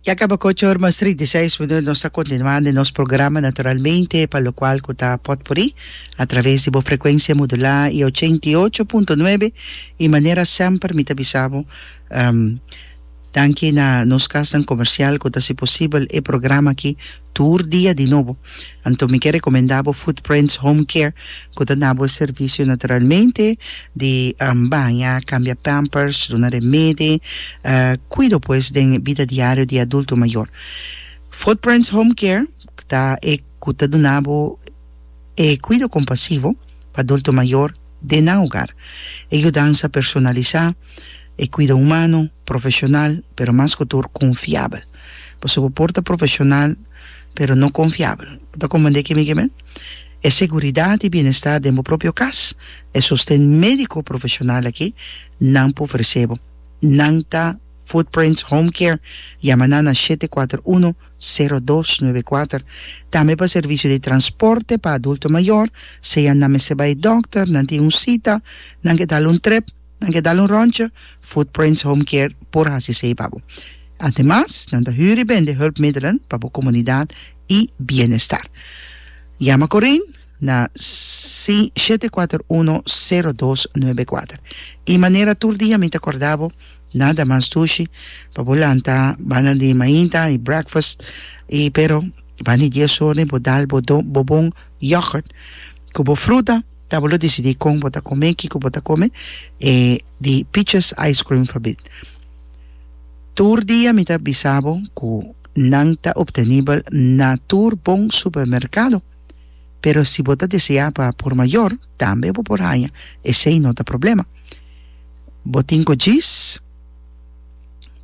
Ya caba cu ocho or mas trinta i seis minuut. Nos ta continuando den nos programa Naturalmente pa locual cu ta potpuri a traves di bo frecuencia modulada y ochenta i ocho punto nuebe. Y manera semper mi ta bisa bo danki na nos casnan comercial cu ta haci posibel e programa aki. tur dia di nobo. Anto mi ke rekomendá bo Footprints Home Care ku ta nabo e servisio naturalmente di baña, kambia pampers, duna remedi, kuido pues den e bida diario di e adulto mayor. Footprints Home Care ta e ku ta duna bo e kuido kompasivo pa adulto mayor den nan hogar. E yudansa personalisá, e kuido humano, profeshonal, pero mas ku tur konfiabel. Pasobra bo por ta profesional, pero no konfiabel. Bo ta komprendé ke mi ke men? E seguridat i bienestar den bo propio kas, e sosten médiko profesional akí nan por ofresé bo. Nan ta Footprints Home Care. Yama nan na shete kuater uno, sero dos nuebe kuater. Tambe pa servisio di transporte pa adulto mayor, sea nan mester bai dòkter, nan tin un sita, nan ke dal un trep, Nan ke dal un ròntje, Footprints Home Care por hasi esei pa bo. Ademas, nan ta hür i bende hùlpmiddelen pa bo komunidat i bienestar. Yama Coreen na si shete kuater uno sero dos nuebe kuater. I manera tur dia mi ta kòrda bo, nada mas dushi pa bo lanta banda di mainta i breakfast i pero banda di dies orne bo dal bo bo bon yoghurt ku bo fruta, Tabata lo disidí kon bo ta kom'é, kiko bo ta kome e di Peaches Ice Cream Fabit. Tur dia mi ta bisa bo ku nan ta optenibel na tur bon supermerkado, pero si bo ta deseá pa por mayor tambe bo por haña esei no ta problema. Bo tin ku djis?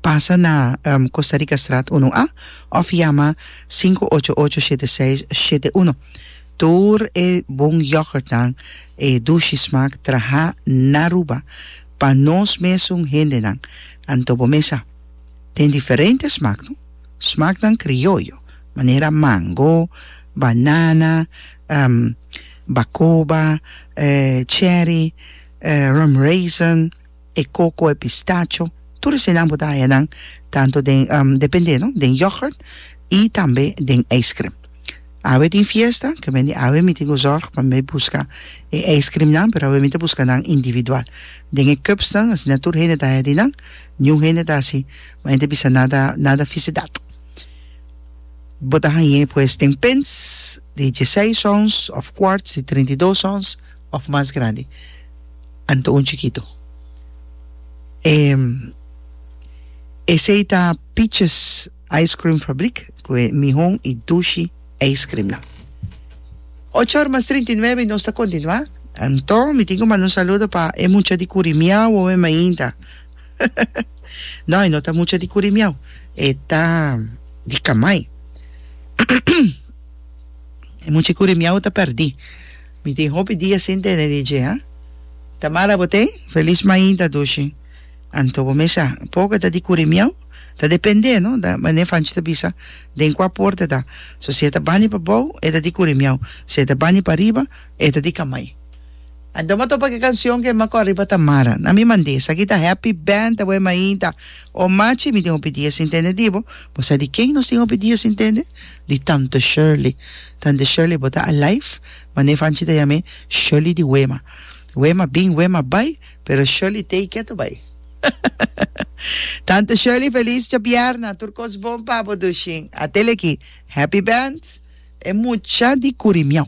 Pasa na Costa Rica Straat Uno A òf yama sinku ocho ocho shete seis shete uno. Tur e bon yògùrtnan, e dushi smaak trahá na Aruba pa nos mesun hendenan. Anto bo mesa. Den diferente smaak, no? Smaaknan krioyo, manera mango, banana, bacoba, cherry, rum raisin. e coco, e pistacho, tur esenan bo ta haya nan tanto den depende no den yoghurt y tambe den ijscream. Awe tin fiesta, ke mende awe mi tin cu zorg pa mi busca e ijscream nan, pero awe mi ta busca nan individual. Den e cups nan asina tur hende ta haya di nan, niun hende ta haci ma e ta bisa nada nada ficidad. Bo ta hañ'e pues den pins di dieseis ons of quarts di trinta i dos ons. òf mas grandi anto un chikitu. E esei ta Piches Ijskrim Fabrik ku e Mihon i Dushi Ijskrimnan. Ocho or mas trinta i nuebe i nos ta kontinuá. Anto mi tin ku manda un saludo pa e mucha di Kurimiau oe mainta. No, e no ta mucha di Kurimiau, e ta di Kamai. E mucha di Kurimiau ta pèrdí. Mi tin hopi dia sin tene DJ ha. Tamara bo tin? Feliz mainta Dushi. Anto bo mes a poco ta di curi miau? Ta depende no da mane Fanchi ta bisa den cua porta ta. So si e ta bani pa bou e ta di curi miau, si e ta bani pa riba e ta di camai. Anto ma topa ki cancion ke ma cor riba Tamara. Na mi mande, esaki ta Happy Band aweh mainta. O machi mi tin hopi dia sin tende di bo. Bo sa di ken nos tin hopi dia sin tende? Di Tante Shirley. Tante Shirley bo ta alive? Mane Fanchi ta yam'e Shirley di Wema. Wema bin Wema bai pero Shirley tei keto bai. Tante Shirley feliz djabièrnà tur kos bon pa bo Dushin. A tele aki. Happy Band e mucha di Curimeau.